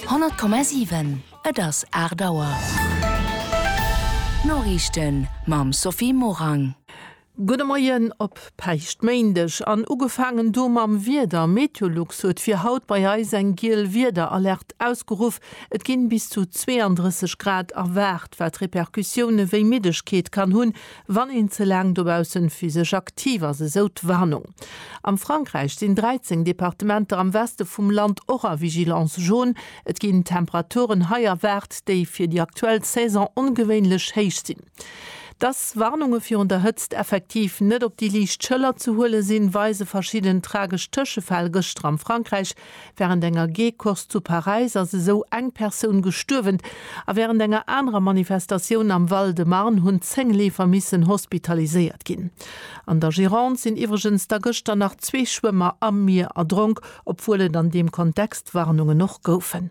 100,7 Et ass 8 Auer. D'Noriichten mam Sophie Morang. Gudde Moien op Päischtméindeg an ugefaangen do mam Wieder. Meteolux huet fir haut bei eis eng giel Wiederalert ausgeruff. Et ginn bis zu 32 Grad erwaart, wat Repercussioune wéi Middegkeet kann hunn, wann een ze laang dobausse physesch aktiv ass, esou d'Warnung. Am Frankräich sinn 13 Departementer am Weste vum Land och a Vigilance jaune. Et ginn Temperaturen hei erwaart, déi fir déi aktuell Saison ongewéinlech héich sinn. Dass Warnunge virun der Hëtzt effektiv net op déi liicht Schëller ze huele sinn, weise verschidden tragesch Tëschefäll gëschter am Frankräich, Wärend enger G-Course zu Paräis ass esou eng Persoun gestuerwen a wärend enger anerer Manifestatioun am Val-de-Marne hunn 10 Leefer missen hospitaliséiert ginn. An der Gironde sinn iwwregens da gëschter nach zwee Schwëmmer am Mier erdronk, obwuel et an deem Kontext Warnungen och goufen.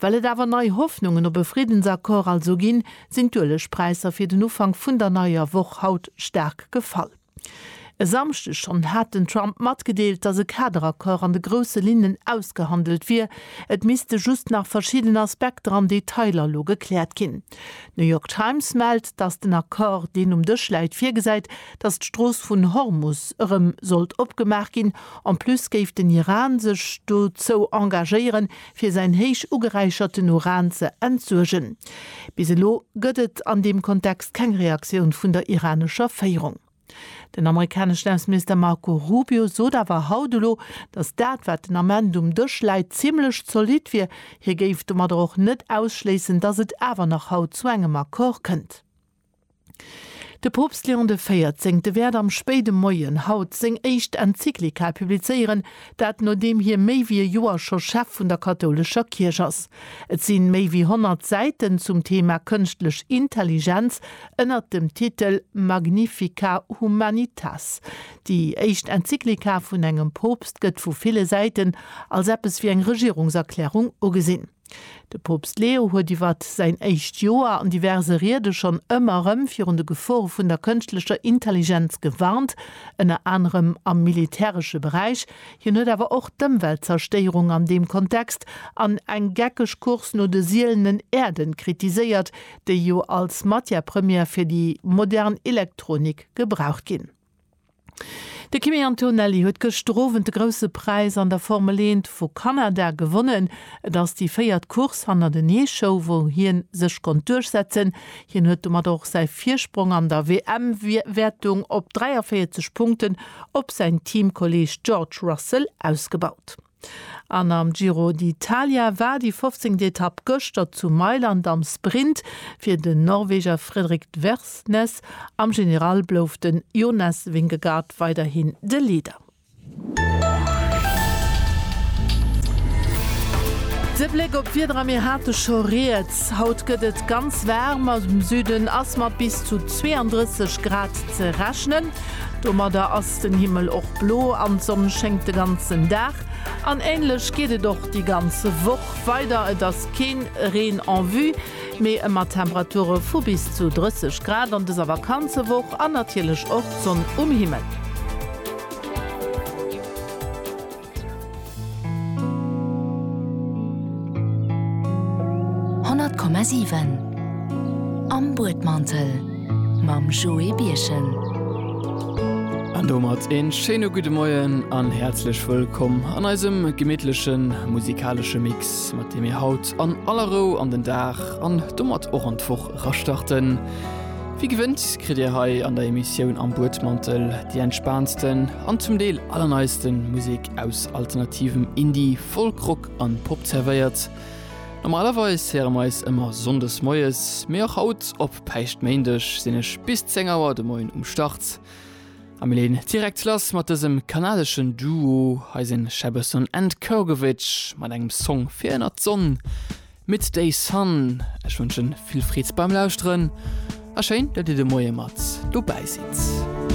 Well et awer nei Hoffnungen op e Friddensaccord also ginn, sinn d'Uelegpräisser fir den Ufank vun der neier Woch haut staark gefall. E Samschdeg schonn hat den Trump matgedeelt, datt e Kaderaccord an de grousse Linnen ausgehandelt wier, et misste just nach verschidden Aspekter an Detailer elo gekläert ginn. D'New York Times mellt, datt den Accord, deen um Dësch läit, virgesäit, dass d'Strooss vun Hormus erëm sollt opgemaach ginn. En plus géif den Iran sech dozou engagéieren, fir säin héich ugeräicherten Uran ze entsuergen. Bis elo gëtt et an deem Kontext keng Reaktioun vun der iranescher Féierung. Den amerikaneschen Ausseminister Marco Rubio sot awer haut elo, dass dat, wat den Ament um Dësch läit, zimmlech zolidd wier. Hie géif domadder och net ausschléissen, dass et awer nach haut zu engem Accord kënnt. De Poopst Léon de 14 wäert am spéide Moien haut seng éischt Enzyklika publizéieren, dat nodeem hie méi wéi e Joer scho Chef vun der kathoulescher Kierch ass. Et si méi wéi 100 Säiten zum Thema Kënschtlech Intelligenz ënnert dem Titel Magnifica humanitas. Déi éischt Enzyklika vun engem Poopst gëtt vu ville Säiten als eppes wéi eng Regierungserklärung ugesinn. De Poopst Leo huet iwwer säin éischt Joer an diverse Riede schonn ëmmer erëm virun de Gefore vun der kënschtlecher Intelligenz gewarnt, ënner anerem am militäresche Beräich. Hien huet awer och d'Ëmweltzerstéierung an deem Kontext an eng geckeg Course no de sielenen Äerden kritiséiert, déi jo als Matière première fir déi modern Elektronik gebraucht ginn. De Kimi Antonelli huet gëschter Owend de Grousse Präis an der Formel Eent vu Kanada gewonnen. Et ass déi véiert Course hannerteneeshow, wou hien sech konnt duerchsetzen. Hien huet domat och säi Virsprong an der WM-Wäertung op 43 Punkten op säin Teamkolleeg George Russell ausgebaut. An am Giro d'Italia war déi fofzéngt Etapp gëschter zu Mailand am Sprint fir den Norweger Frederik Tversnes. Am General blouf de Jonas Vingegaard weiderhin de Leader. De Bléck op d'Wieder a mir hate scho rieds. Haut gëtt et ganz waarm, am Süden ass mat bis zu 32 Grad ze rechnen. Domadder ass ass den Himmel och blo an d'Sonn schéngt de ganzen Dag. An ähnlech geet et och déi ganz Woch weider, et ass keen Reen en vue, mee ëmmer Temperature vu bis zu 30 Grad an dëser Vakanzewoch an natierlech och d'Sonn um Himmel. Honnert Komma siwen Am Buedmantel mam Joé Birchen. An domat een schéine gudde Moien an häerzlech wëllkomm an eisem gemittlechen musikalesche Mix, mat deem mir haut an aller Rou an den Dag an domat och an d'Woch era starten. Wéi gewënnt kritt Dir hei an der Emissioun Am Buedmantel déi entspaantsten an zum Deel allerneiste Musek aus alternativem Indie, Folk, Rock a Pop zerwéiert. Normalerweis héiere mer eis ëmmer Sonndes moies, mee och haut op Päischtméindeg sinn ech bis 10 Auer de Moien um Start a mir leeën direkt lass mat dësem kanadeschen Duo. Hei sinn Shabason and Kurgovich mat engem Song fir ënnert d'Sonn. Midday Sun. Ech wënschen vill Freed beim Lauschteren a schéin dat dir de Moie mat dobäi sidd.